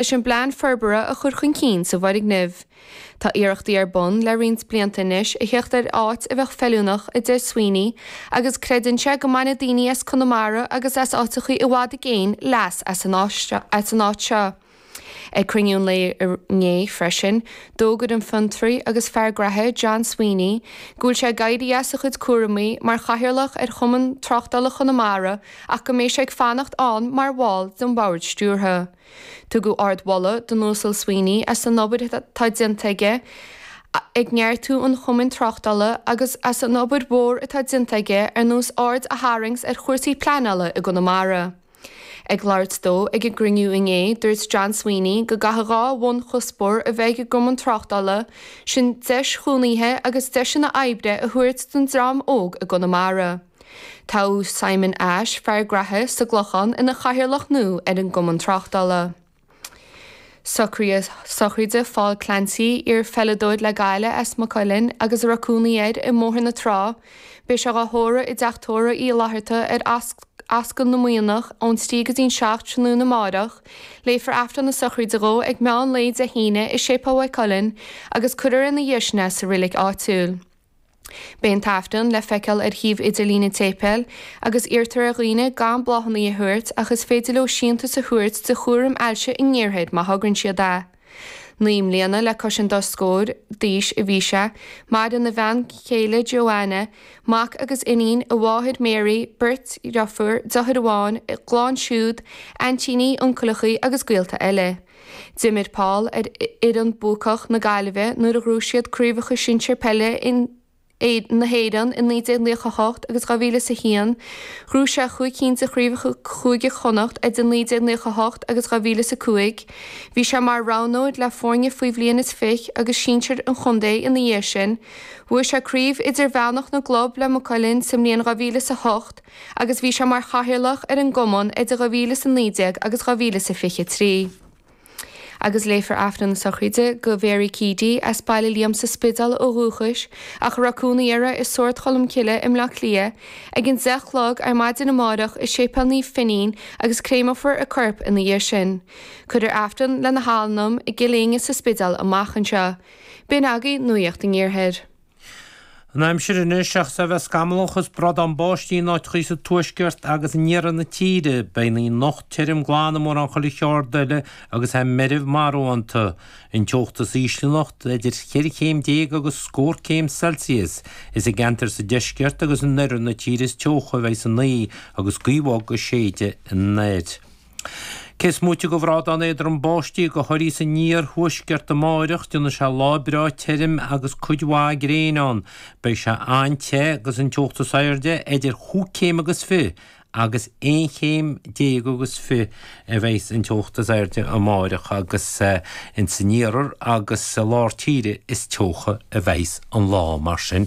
leis an bplean forbartha a chur chun cinn sa bhfoirgneamh. Tá iarrachtaí ar bun le roinnt blianta anois a theacht ar áit a bheadh feiliúnach, a deir Sweeney, agus creideann sé go mbainfidh daoine as Conamara agus as áiteachaí i bhfad i gcéin leas as an áit seo. Ag cruinniú an lae inné freisin, d'fhógair an fiontraí agus fear graithe John Sweeney go bhfuil sé ag éirí as a chuid cúramaí mar chathaoirleach ar Chumann Tráchtála Chonamara ach go mbeidh sé ag fanacht ann mar bhall den bhord stiúrtha. Tugadh ardmholadh don Uasal Sweeney as an obair atá déanta aige ag neartú an Chumainn Tráchtála agus as an obair mhór atá déanta aige ar nós aird a tharraingt ar chúrsaí pleanála i gConamara. Ag labhairt dó ag an gcruinniú inné, dúirt John Sweeney go gcaithfeadh dhá bhunchuspóir a bheith ag an gCumann Tráchtála, sin deis chónaithe agus deiseanna oibre a thabhairt don dream óg i gConamara. Tá Simon Ashe, fear graithe, sa gClochán ina chathaoirleach nua ar an gCumann Tráchtála. Socruithe sochraide Phaul Clancy, iar-pheileadóir le Gaillimh as Maigh Cuilinn agus a raibh cónaí air i mBóthar na Trá, beidh sé dhá thórramh i dTeach Tórraimh Uí Fhlaithearta ar Ascaill na Muimhneach ón 3 go dtí an 7 tráthnóna amárach. Léifear Aifreann na sochraide dhó ag meán lae Dé hAoine i Séipéal Mhaigh Cuilinn agus cuirfear ina dhiaidh sin é sa reilig áitiúil. Beidh an tAifreann le feiceáil ar shuíomh idirlín an tséipéil, agus iarrtar ar dhaoine gan bláthannaí a thabhairt ach is féidir leo síntiús a thabhairt do Chúram Ailse an Iarthair má thograíonn siad é. Naoi mbliana le cois an dá scór d'aois a bhí sé, maireann a bhean chéile Johanna, mac agus iníon, a mháthair Mary, beirt dheirfiúr, deartháir amháin, a gclann siúd, aintíní, uncaileachaí agus gaolta eile. D'imir Paul ar fhoireann buacach na Gaillimhe nuair a ghnóthaigh siad craobhacha sinsir peile na hÉireann i 1998 agus 2001. Ghnóthaigh sé chúig cinn de chraobhacha Chúige Chonnacht idir 1998 agus 2005. Bhí sé mar roghnóir le foirne faoi bhliain is fiche agus sinsir an chontae ina dhiaidh sin. Bhuaigh sé craobh idirmheánach na gclub le Maigh Cuilinn sa mbliain 2008 agus bhí sé mar chathaoirleach ar an gcumann idir 2019 agus 2023. Agus léifear Aifreann na Sochraide do Mhary Keady, as Baile Liam sa Spidéal ó dhúchais ach a raibh cónaí uirthi i Sord Cholmcille i mBleá Cliath, ag an deich a chlog ar maidin amárach i Séipéal Naomh Finín agus créameofar a corp ina dhiaidh sin. Cuirfear Aifreann lena hanam i gCill Éinne sa Spidéal amach anseo. B'in agaibh Nuacht an Iarthair. An aimsir anois, seachas a bheith scamallach is brádán báistí in áiteachaí sa tuaisceart agus in iarthar na tíre, beidh an oíche anocht tirim glan i mórán chuile cheard eile agus í meirbh marbhánta. An teocht is ísle anocht, idir cheithre chéim déag agus scór céim Celsius. Is i gceantair sa deisceart agus in oirthear na tíre is teocha a bheas an oíche agus gaoth bhog ag séideadh anoir. Cés moite de bhrádán éadrom báistí ó thuaidh is san iarthuaisceart amáireach, déanfaidh sé lá breá tirim agus cuid mhaith gréine ann. Beidh sé an-te agus an teocht is airde idir chúig chéim agus fiche agus aon chéim déag agus fiche a bheas an teocht is airde amáireach agus ins an iarthar agus i lár tíre is teocha a bheas an lá mar sin